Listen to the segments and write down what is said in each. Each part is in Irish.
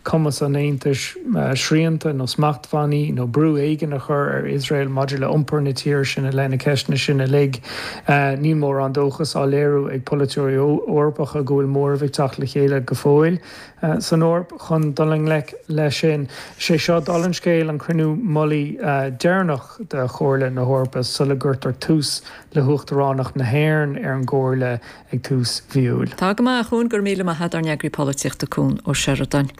cumas an Aontais srianta nó smachtbhannaí nó brú éigin a chur ar Iosrael maidir le hiompar na tíre sin i leith na ceisteanna sin uilig. Níl mórán dóchas á léiriú ag polaiteoirí Eorpacha go bhfuil móramh ag teacht le chéile go fóill san Eoraip chun dul i ngleic leis sin. Is é seo, dála an scéil, an cruinniú mullaigh deireanach de Chomhairle na hEorpa sula gcuirtear tús le huachtaránacht na hÉireann ar an gComhairle ag tús mhí Iúil. Tá go maith, a Chuan, go raibh míle maith agat, ár n-eagraí polaitíochta Cuan Ó Seireadáin.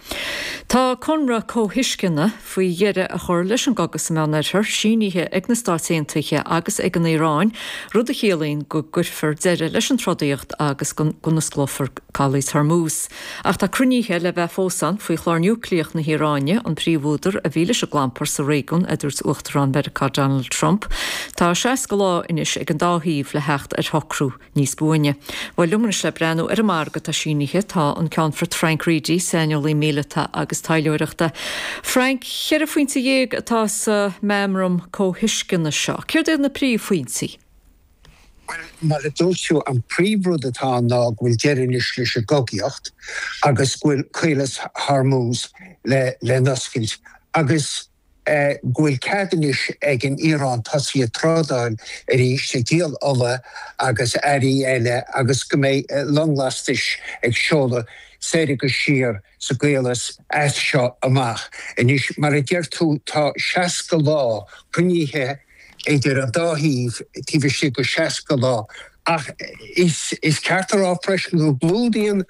Tá conradh comhthuisceana faoi dheireadh a chur leis an gcogadh sa Meánoirthear sínithe ag na Stáit Aontaithe agus ag an Iaráin, rud a chiallaíonn go gcuirfear deireadh leis an trodaíocht agus go n-osclófar Caolas Hormuz. Ach tá cruinnithe le bheith fós ann faoi chlár núicléach na hIaráine, an príomhúdar a bhí leis an gclampar sa réigiún, a dúirt Uachtarán Mheiriceá Donald Trump. Tá 60 lá anois ag an dá thaobh le theacht ar shocrú. Níos buaine. Bhuel, liom anois le breathnú ar an margadh atá sínithe, tá an Ceannfort Frank Reidy, saineolaí míleata agus taidhleoireachta. Frank, ceithre phointe dhéag atá sa meamram comhthuisceana seo. Céard iad na príomhphointí? Bhuel, mar a dúirt tú, an príomhrud atá ann ná go bhfuil deireadh anois leis an gcogaíocht agus go bhfuil Caolas Hormuz le n-oscailt agus, go bhfuil cead anois ag an Iaráin tosaí ag trádáil arís, ag díol ola agus earraí eile agus go mbeidh long lastais ag seoladh soir agus siar sa gCaolas as seo amach. Anois, mar a deir tú, tá 60 lá cruinnithe idir an dá thaobh taobh istigh de 60 lá ach is ceart a rá freisin go gclúdaíonn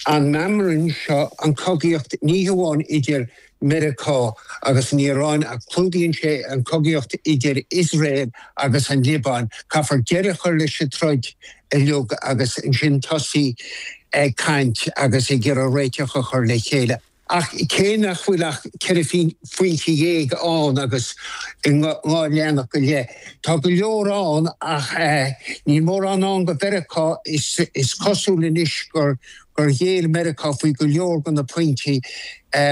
an meamram seo an chogaíocht ní hamháin idir Mheiriceá agus an Iaráin ach clúdaíonn sé an chogaíocht idir Iosrael agus an Liobáin. Caithfear deireadh a chur leis an troid uilig agus ansin tosaí ag caint agus ag iarraidh réiteach a chur le chéile. Ach cé nach bhfuil ach ceithre phointe dhéag ann agus in dhá leathanach go leith, tá go leor ann ach níl mórán ann do Mheiriceá. Is cosúil anois gur gur ghéill Meiriceá faoi go leor de na pointí.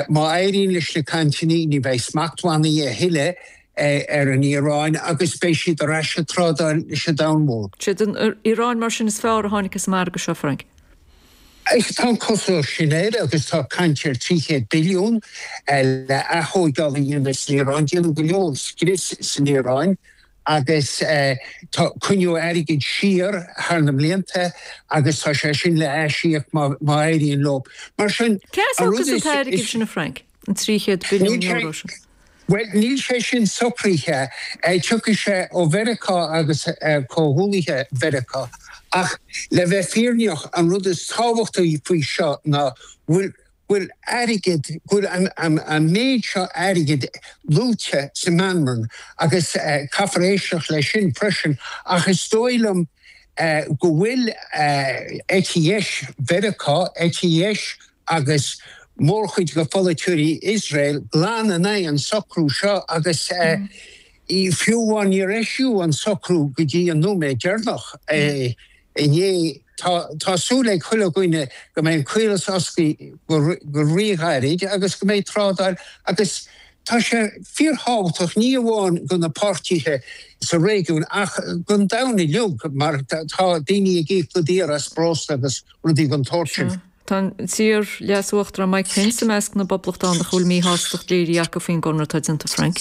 Má éiríonn leis na cainteanna, ní bheidh smachtbhannaí a thuilleadh ar an Iaráin agus beidh siad ar ais ag trádáil leis an domhan mór. Sé an Iaráin mar sin is fearr a tháinig as an margadh seo, Frank? Tá an chosúlacht sin air agus tá caint ar 300 billiún le atóigeáil a dhéanamh san Iaráin. Déanadh go leor scrios san Iaráin agus tá coinníodh airgead siar thar na blianta agus tá sé sin le haisíoc má éiríonn leo. Mar sin, Céard an rud is is sin a Frank, an trí chéad billiún euro sin? Bhuel, níl sé sin socraithe. Tiocfaidh sé ó Mheiriceá agus comhghuaillithe Mheiriceá. Ach le bheith fírinneach, an rud is tábhachtaí faoi seo ná go bhfuil bhfuil airgead, go bhfuil an méid seo airgid luaite sa meamram agus caithfear éisteacht leis sin freisin, ach is dóigh liom go bhfuil eite dheis Mheiriceá, eite dheis agus mórchuid de pholaiteoirí Iosrael glan in aghaidh an socrú seo agus Fiú amháin, níor eisíodh an socrú go dtí an nóiméad deireanach inné. Tá súil ag chuile dhuine go mbeidh an caolas oscailte go ríghairid agus go mbeidh trádáil agus tá sé fíorthábhachtach ní amháin do na páirtithe sa réigiún ach don domhan uilig mar tá daoine ag íoc go daor as breosla agus rudaí den tsórt sin. Tá an t-iar-leas-uachtarán Mike Pence i measc na bPoblachtánach a bhfuil míshástacht léirithe acu faoin gconradh atá déanta, Frank.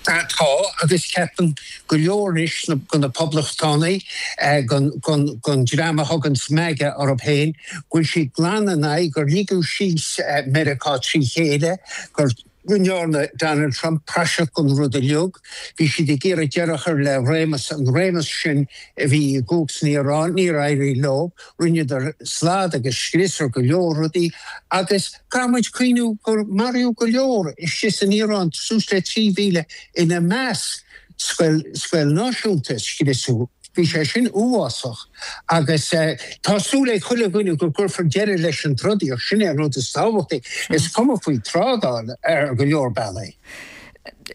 Tá, agus ceapann go leor anois de na Poblachtánaigh, den dream a thugann MAGA orthu féin, go bhfuil siad glan in aghaidh gur ligeadh síos Meiriceá trí chéile, gur. go ndearna Donald Trump praiseach den rud uilig, bhí siad ag iarraidh deireadh a chur le réimeas, an réimeas sin a bhí i gcumhacht san Iaráin, níor éirigh leo, rinneadar slad agus scrios ar go leor rudaí agus caithfidh muid cuimhniú gur maraíodh go leor istigh san Iaráin, suas le 3,000 ina measc. Scoil, scoil náisiúnta a scriosadh. Bhí sé sin uafásach agus tá súil ag chuile dhuine go gcuirfear deireadh leis an trodaíocht, sin é an rud is tábhachtaí. Is cuma faoi trádáil ar go leor bealaí.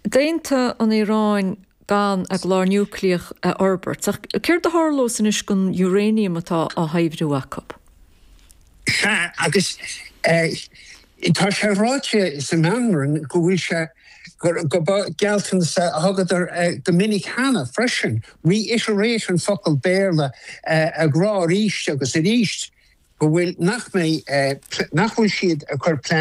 Déanta an Iaráin gan a gclár núicléach a fhorbairt, ach céard a tharlós anois gon uranium atá á shaibhriú acu? Sea, agus tá sé ráite sa meamram go bhfuil sé, go ba gealltanas a thugadar go minic cheana freisin, reiterate an focal Béarla, a rá arís agus arís go bhfuil, nach mbeidh, nach bhfuil siad ag cur plean